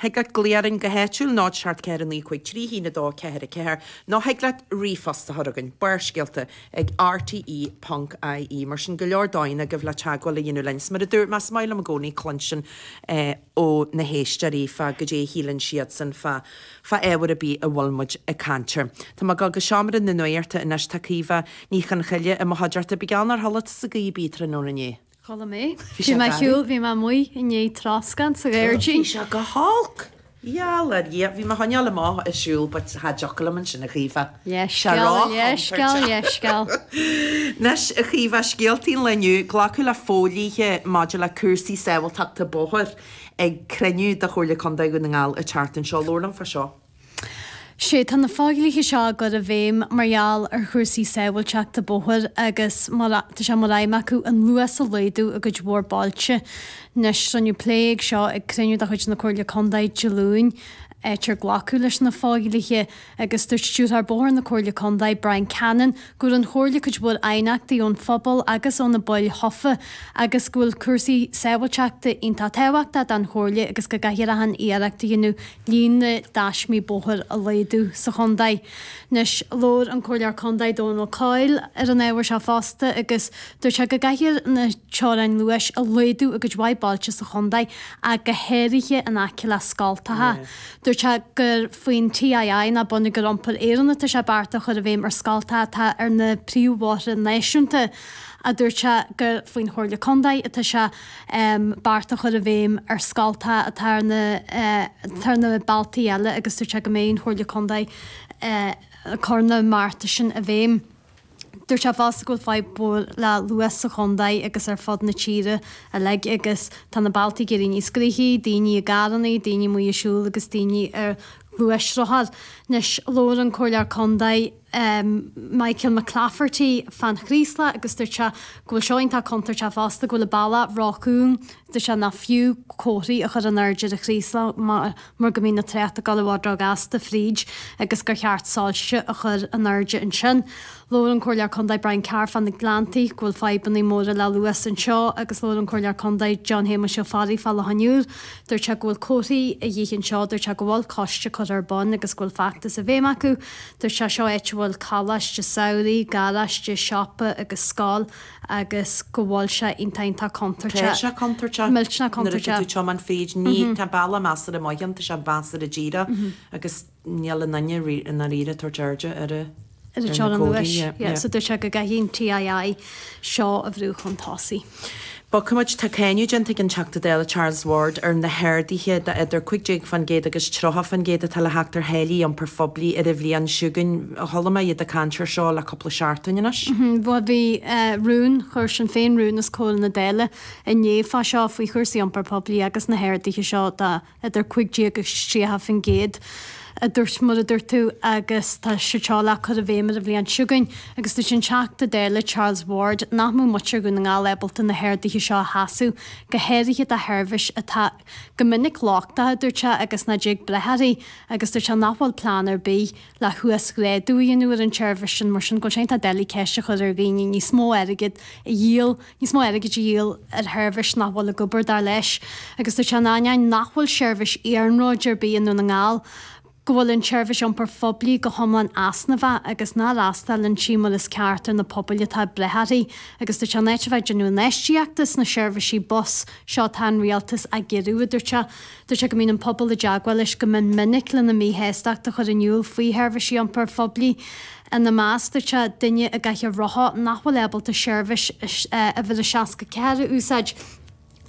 Thig leat glaoch orainn go háitiúil, 0 7 4 9 5 3 1 2 4 4, nó thig leat ríomhphost a chur chugainn, barrscéalta ag rte ponc ie. Mar sin, go leor dóigheanna agaibh le teagmháil a dhéanamh linn. 'S mar a dúirt mé, is maith liom i gcónaí cluinstin ó na héisteoirí fá goidé a shíleann siadsan fá fá ábhar a' bith a bhfuil muid ag caint air. Tá mé ag dul go seomra na nuachta anois, tá Caoimhe Ní Chonchoille i mo chuideachta. Bíodh geall nár shiúil tusa i gcaoi a' bith tráthnóna inné. Shiúil mé. Bhí mé ag siúl, bhí mé amuigh i ndiaidh troscán sa ghairdín. Bhí sé go holc. Gheall ar Dhia, bhí mé chun a ghabháil amach ag siúl but cha dtiocfadh liom ansin a Chaoimhe. Leithscéal, leithscéal, leithscéal. Anois a Chaoimhe, scéaltaí an lae inniu, glacadh le fodhlíthe maidir le cúrsaí sábháilteachta bóthair ag cruinniú de Chomhairle Contae Dhún na nGall an tseachtain seo. Labhair liom fá seo. Sea, tá na fodhlíthe seo á gcur i bhfeidhm mar gheall ar chúrsaí sábháilteachta bóthair agus tá sé mar aidhm acu an luas a laghdú i gcuid mhór bailte. Anois, rinneadh plé air seo ag cruinniú de chuid na Comhairle Contae Dé Luain, áit ar glacadh leis na fodhlíthe agus dúirt Stiúrthóir Bóthair na Comhairle Contae, Bryan Cannon, go bhfuair an Chomhairle cuid mhór aighneachtaí ón phobal agus ó na baill thofa agus go bhfuil cúrsaí sábháilteachta iontach tábhachtach don Chomhairle agus go gcaithfear achan iarracht a dhéanamh líon na dtaismí bóthair a laghdú sa chontae. Anois, labhair an Comhairleoir Contae, Dónal Coyle, ar an ábhar seo fosta agus dúirt sé go gcaithfear na teorainn luais a laghdú i gcuid mhaith bailte sa chontae ach go háirithe in aice le scoltacha. Dúirt sé gur faoin TII ná Bonneagar Iompair Éireann atá sé bearta a chur i bhfeidhm ar scoltacha atá ar na príomhbhóithre náisiúnta ach dúirt sé gur faoin Chomhairle Contae atá sé bearta a chur i bhfeidhm ar scoltacha atá ar na bealtaí eile agus dúirt sé go mbeidh an Chomhairle Contae ag cur na mbearta sin i bhfeidhm. Dúirt sé fosta go bhfuil fadhb mhór le luas sa chontae agus ar fud na tíre uilig agus tá na bealtaí ag éirí níos gnoithí, daoine i gcarrannaí, daoine amuigh ag siúl agus daoine ar ghluaisrothair. Anois labhair an Comhairleoir Contae. um Michael McClafferty fán Chraoslach agus dúirt sé go bhfuil seo iontach contúirteach fosta, go bhfuil an bealach róchúng, dúirt sé nach fiú comharthaí a chur in airde ar an Chraoslach mar go mbíonn an trácht ag gabháil i bhfad róghasta fríd agus gur cheart soilse a chur in airde ansin. Labhair an Comhairleoir Contae Brian Carr fá na Gleanntaí go bhfuil fadhbannaí móra le luas anseo agus labhair an Comhairleoir Contae John Shéamuis Ó Fearraigh fá Loch an Iúir, dúirt sé go bhfuil comharthaí a dhíth anseo, dúirt sé go bhfuil coiste curtha ar bun agus go bhfuil feachtas i bhfeidhm acu. Dúirt sé seo áit a bhfuil coláiste samhraidh, garáiste, siopa agus scoil agus go bhfuil sé iontach iontach contúirteach. Tá sé contúirteach. Millteanach contúirteach. Nuair a tá tú ag tiomáint fríd nó tá an bealach measartha maith ann, tá sé measartha díreach agus níl na daoine i ndáiríre ag tabhairt airde ar na comharthaí. Ar an teorainn luais. Yeah. So dúirt sé go gcaithfidh an TII seo a bhrú chun tosaigh. Bhuel, feicimid, tá cáineadh déanta ag an Teachta Dála Charles Ward ar na harduithe de idir 15% agus 30% atá le theacht ar tháillí iompar phoiblí ar an bhliain seo chugainn. Chuala mé iad ag caint ar seo le cúpla seachtain anois. Bhuel bhí rún, chuir Sinn Féin rún os comhair na Dála inné fá seo, faoi chúrsaí iompar poiblí agus na harduithe seo dá. idir 15 agus 30%, a dúirt mar a dúirt tú, agus atá siad ag dul a chur i bhfeidhm ar an bhliain seo chugainn, agus dúirt an Teachta Dála Charles Ward nach mbeadh muintir Dhún na nGall ábalta na harduithe seo a sheasamh, go háirithe do sheirbhís atá go minic lochtach, dúirt sé, agus nach dtig brath uirthi, agus dúirt sé nach bhfuil plean ar bith, le huasghrádú a dhéanamh ar an tseirbhís sin, mar sin, go bhfuil sé iontach doiligh ceist a chur ar dhaoine níos mó airgead a dhíol, níos mó airgid a dhíol ar sheirbhís nach bhfuil ag obair, dar leis. Agus dúirt sé, in ainneoin nach bhfuil seirbhís iarnróid ar bith i nDún na nGall, go bhfuil an tseirbhís iompair phoiblí go hiomlán easnamhach agus nach bhfreastalaíonn sí mar is ceart ar na pobail atá ag brath uirthi. Agus dúirt sé, in áit a bheith ag déanamh infheistíochta sna seirbhísí bus, seo atá an Rialtas á gciorrú, a dúirt sé. Deir sé go mbíonn an pobal i dteagmháil leis go mion minic lena míshástacht a chur in iúl faoi sheirbhísí iompair phoiblí. Ina measc, dúirt sé, duine i gcathaoir rotha nach bhfuil ábalta seirbhís Uimhir a 64 a úsáid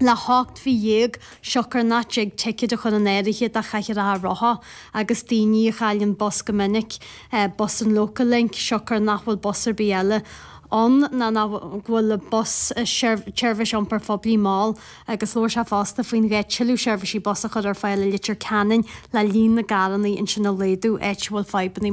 le hocht mhí dhéag siocair nach dtig ticéid a chur in áirithe do chathaoireacha rotha agus daoine a chailleann bus go minic, bus an Local Link, siocair nach bhfuil bus ar bith eile ann ná go bhfuil bus, seirbhís iompair phoiblí, mall. agus labhair sé fosta faoin ghá tuilleadh seirbhísí bus a chur ar fáil i Leitir Ceanainn le líon na gcarrannaí ansin a laghdú, áit a bhfuil fadhbanna.